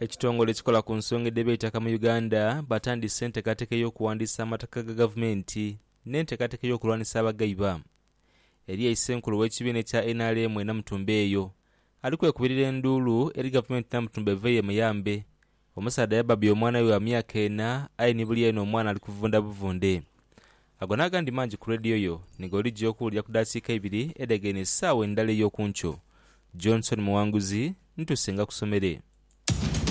Ekitongole ekikola ku nsonga edh'eby'eitaka mu Uganda batandise enteekateeka ey'okuwandiisa amataka ga gavumenti n'enteekateeka ey'okulwanisa abagaiba. Eriyo aise enkulu w'ekibiina ekya nrm e Namutumba eyo ali kwekubirira enduulu eri gavumenti Namutumba eveeyo emuyambe. Omusaadha yabbabya omwana we wa myaka ena aye ni buli eno omwana ali kuvunda buvunde. Ago n'agandi mangi ku leediyo yo ni g'oligya okuwulira ku daasiika ibiri edhegheine esaawa endala ey'oku nkyo. Johnson Muwanguzi, Nituusenga ku somere.